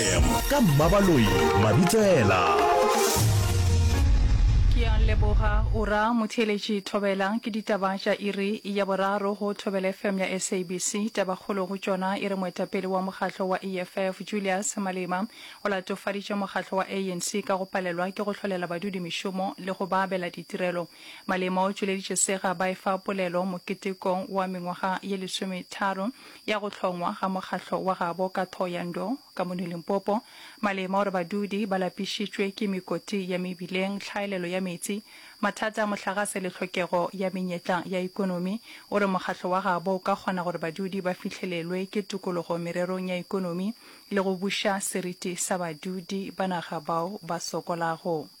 FM ka Mmabaloi Mabitsela. Ke a leboga o ra motheeletši Thobela. Ke ditaba tša iri ya boraro go Thobela FM ya SABC. Tabakgolo go tšona e re moetapele wa mokgatlo wa EFF Julius Malema o latofaditše mokgatlo wa ANC ka go palelwa ke go hlolela badudi mešomo le go ba abela ditirelo. Malema o tšweleditše sega ba efa polelo moketekong wa mengwaga ye lesometharo ya go hlongwa ga mokgahlo wa gabo ka Thohoyandou, ka mono Limpopo, malema gore badudi ba lapišitšwe ke mekoti ya mebileng, tlhaelelo ya metsi, mathata a mohlagase le hlokego ya menyetla ya ekonomi, o re mokgahlo wa gabo o ka kgona gore badudi ba fihlelelwe ke tokologo mererong ya ekonomi le go buša seriti sa badudi ba naga bao ba sokolago.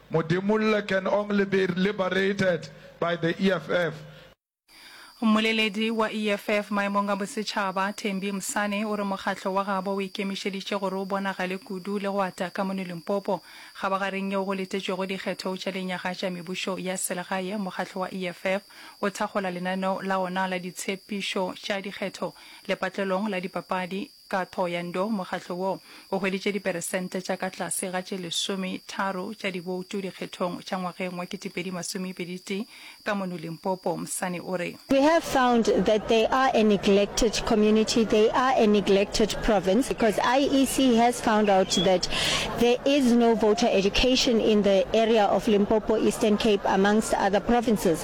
Modemolle can only be liberated by the EFF. Mmoleledi wa EFF maemong a bosetšhaba, Thembi Msane, o re mokgatlo wa gabo o ikemišeditše gore o bonagale kudu le go ata ka mono Limpopo. Kgabagareng yeo go letetšwego dikgetho tša lenyaga tša mebušo ya selegae, mokgatlo wa EFF o thakgola lenaneo la ona la ditshepišo tša dikgetho lepatlelong la dipapadi, Ka tho ya ndo, mokgatlo wo o hweditše diperesente tša ka tlase ga tše lesome tharo tša diboutu dikgethong tša ngwageng wa ketepedi masome pedi tee ka mono Limpopo, Msane o re. We have found that they are a neglected community, they are a neglected province because IEC has found out that there is no voter education in the area of Limpopo, Eastern Cape amongst other provinces.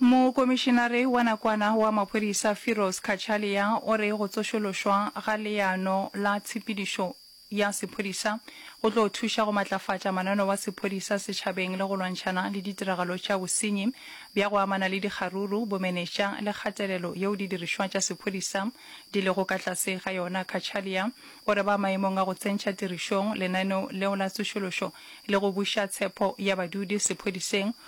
Mokomišinare wa nakwana wa maphodisa Firoz Cachalia o re go tsošološwa ga leano la tshepedišo ya sephodisa go tlo thuša go matlafatša manano wa sephodisa setšhabeng le go lwantšhana le ditiragalo tša bosenyi bja go amana le dikgaruru, bomenetša le kgatelelo yeo didirišwa tša sephodisa di lego ka tlase ga yona. Cachalia o re ba maemong a go tsentšha tirišong lenaneo leo la tsošološo le go buša tshepo ya badudi sephodiseng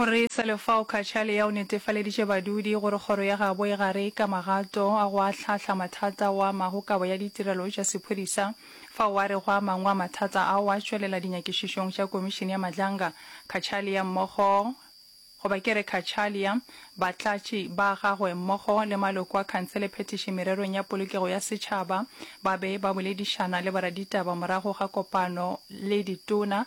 O re Selefao Khatšalea o netefaleditše badudi gore kgoro ya gabo e gare ka magato a go ahlahla mathata ao a amago kabo ya ditirelo tša sephodisa, fao a rego a mangwe a mathata ao a tšwelela dinyakišišong tša Komišene ya Madlanga. Khatšalea mmogo goba ke re Khatšalea, batlatši ba gagwe mmogo le maloko a khansele phetiši mererong ya polokego ya setšhaba ba be ba boledišana le boraditaba morago ga kopano le ditona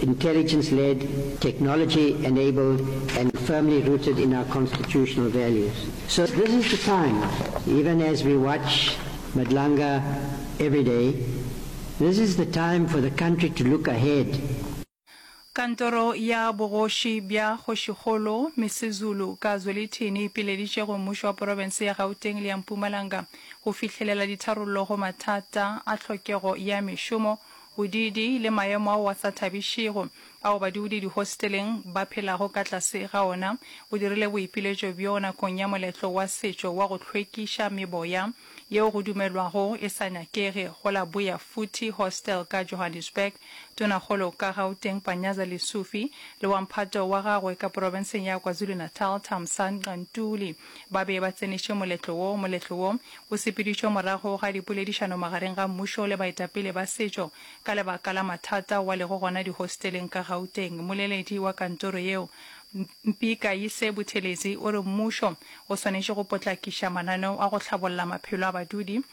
intelligence-led, technology-enabled and firmly rooted in our constitutional values. So this is the time, even as we watch Madlanga every day, this is the time for the country to look ahead. Kantoro ya bogoši bja kgošikgolo Misizulu ka Zwelithini e pileditše go mmušo wa porofense ya Gauteng le ya Mpumalanga go fihlelela ditharollo go mathata a tlhokego ya mešomo, Bodiidi le maemo ao a sa thabišego ao badudi dihosteleng ba phelago ka tlase ga ona bo dirile boipiletšo bjo nakong ya moletlo wa setšo wa go hlwekiša meboya yeo go dumelwago e sa nyakege go la Buya Futhi Hostel ka Johannesburg. Tonakgolo ka Gauteng Panyaza Lesufi le wa mphato wa gagwe ka porofenseng ya KwaZulu-Natal Thamsanqa Ntuli Ba be ba tsenetše moletlo wo. Moletlo wo o sepeditšwe morago ga dipoledišano magareng ga mmušo le baetapele ba setšo ka lebaka la mathata ao a lego gona dihosteleng ka Gauteng. Moleledi wa kantoro yeo, Mpi Kaise Buthelezi o re mmušo o swanetše go potlakiša mananeo a go hlabolla maphelo a badudi.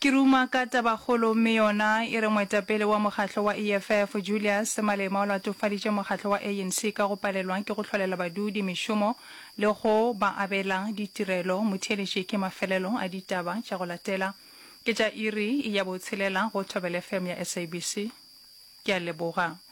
Ke ruma ka tabakgolo mme yona e re moetapele wa mokgatlo wa EFF, Julius Malema o latofaditše mokgatlo wa ANC ka go palelwa ke go hlolela badudi mešomo le go ba abela ditirelo. Motheeletši ke mafelelo a ditaba tša go latela. Ke tša iri ya botshelela go Thobela FM ya SABC. Ke a leboga.